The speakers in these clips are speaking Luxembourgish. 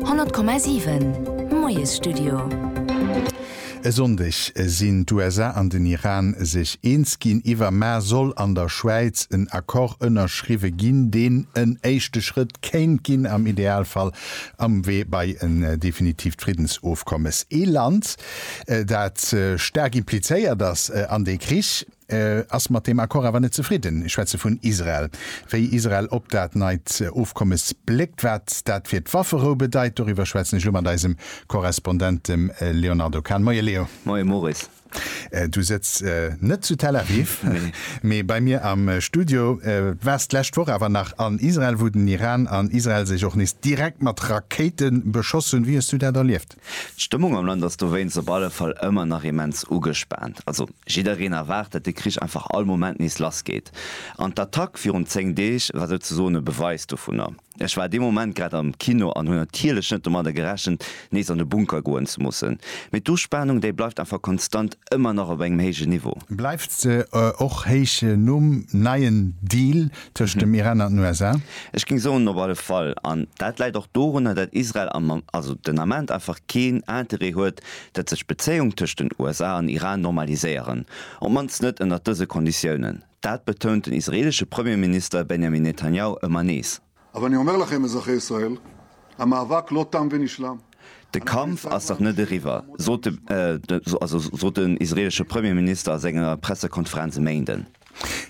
100,7 Moiesstudio. E Sonndeg sinn d'USA an den Iran sech eens ginn, iwwer Mä soll an der Schwäiz en Accord ënnerschriwwe ginn, deen en éischte Schrëtt kéint ginn, am Idealfall am Wee bei en definitiivt Friddensofkommes. Ee Land, dat staark implizéiert ass an dee Krich. ass mat deem Accord awer net zefridden. Ech schwätze vun Israel. Wéi Israel op dat neit Ofkommes bléckt, wat dat fir d'Wafferou bedeit, doriwwer schwätzen ech elo mat eisem Korrespondent, dem Léonardo Kahn. Moie Léo. Moie Maurice. Du sëtz net zu Tel Aviv, mee bei mir am Studio. Du waars d'lescht Woch awer nach an Israel, wou den Iran an Israel sech och nees direkt mat Rakéite beschoss hunn. Wéi hues du dat erlieft? D'Stëmmung am Land ass dowéinst op alle Fall ëmmer nach immens ugespaant. Also jiddereen erwaart, datt de Krich einfach all Moment nees lassgeet. An d'Attack virun 10 Deeg war souzesoen e Beweis dovunner. Ech war dee Moment grad am Kino an hunn natierlech net domadder gerechent, nees an de Bunker goen ze mussen. Mee d'Uspanung, déi bleift einfach konstant ëmmer nach op engem héijen Niveau. Bleift se och héich nom neien Deal tëscht dem Iran an den USA? Ech géing soen op alle Fall. An dat läit och dorunner, dat Israel am, also den Ament einfach keen Interêt huet, dat sech d'Bezéiung tëscht den USA an Iran normaliséieren, op d'mannst net ënnert dëse Konditiounen. Dat betount den israelesche Premierminister Benjamin Netanjahu ëmmer nees. De Kampf ass nach net eriwwer, sot den israeelesche Premierminister a senger Pressekonferenz e Méinden.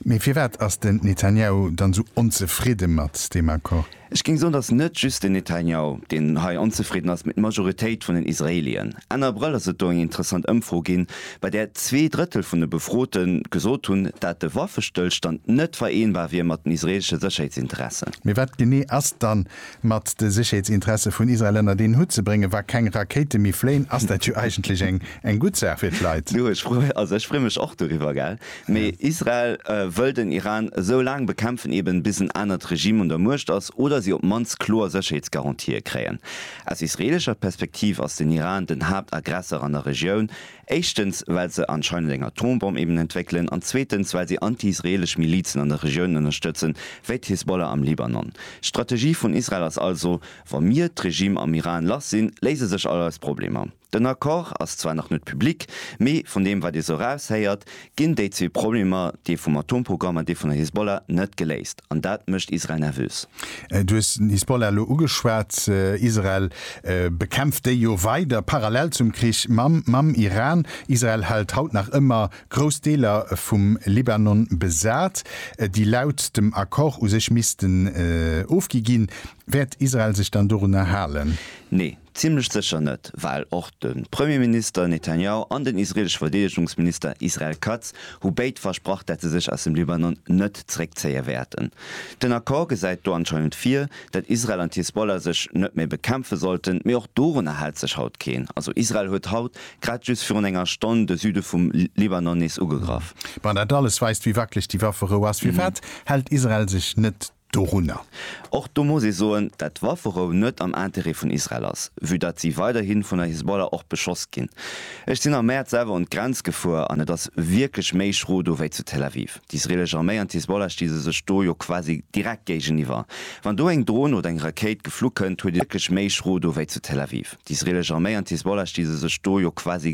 Mee firwat ass den Netanjahu dann esou onzefridde mat deem Accord? Ech géing soen, datt net just den Netanjahu, deen hei onzefridden ass, mee d'Majoritéit vun den Israeelien. Enn Abrëll ass et do eng interessant Ëmfro ginn, bei där zwee Drëttel vun de Befrote gesot hunn, dat de Waffestëllstand net vereenbar wier mat den israeelesche Sécherheetsinteressen. Mee wat genee ass dann mat de Sécherheetsinteresse vun Israel ënnert een Hutt ze bréngen, wa keng Rakéite méi fléien, ass dat jo eigentlech eng eng gutt Saach fir d'Leit. Du, ech freu, also ech freu mech och doriwwer, gell. Mee Israel wëll den Iran esou laang bekämpfen eben, bis en anert Regime un der Muecht ass oder si op d'mannst kloer Sécherheetsgarantië kréien. Aus israelescher Perspektiv ass den Iran den Haaptagressor an der Regioun, Éischtens, well se anscheinend eng Atombomm eben entwéckelen, an zweetens, well si anti-israelesch Milizen an der Regioun ënnerstëtzen, wéi d'Hisbollah am Libanon. D'Strategie vun Israel ass also, Wa mir d'Regime am Iran lass sinn, léise sech all eis Problemer. Den Accord ass zwar nach net public, mee vun deem, wat ee sou eraushéiert, ginn déi zwee Problemer, dee vum Atomprogramm an dee vun der Hisbollah, net geléist. An dat mécht Israel nervös. Du hues den Hisbollah elo ugeschwat. Israel bekämpft déi jo weider, parallel zum Krich mam Iran. Israel hält haut nach ëmmer grouss Deeler vum Libanon besat, déi laut dem Accord u sech missten ofgi ginn. Wäert Israel sech dann dorunner halen? Nee. Zimlech sécher net, well och de Premierminister Netanjahu an den israelesche Verdeedegungsminister Israel Katz hu béid versprach, dat se sech aus dem Libanon net zréckzéie wäerten. Den Accord gesäit do anscheinend vir, dat Israel an d'Hisbollah sech net méi bekämpfe sollten, mee och dorunner hält sech haut keen. Also Israel huet haut, grad just virun enger Stonn, de Süde vum Libanon nees ugegraff. Bon, dat alles weist, wéi wackeleg déi Wafferou ass. Firwat hält Israel sech net dorunner. Och do muss ee soen, dat d'Wafferou net am Intérêt vun Israel ass, vue datt si weiderhin vun der Hisbollah och beschoss ginn. Ech sinn am Mäerz selwer un d'Grenz gefuer an et ass wierklech méi schro do wéi zu Tel Aviv. D'isreelesch Arméi an d'Hisbollah sti se sech do jo quasi direkt géigeniwwer. Wann do eng Dron oder eng Rakéit geflu kënnt, huet ee wierklech méi schro do wéi zu Tel Aviv. D'isreelesch Arméi an d'Hisbollah sti se sech do jo quasi.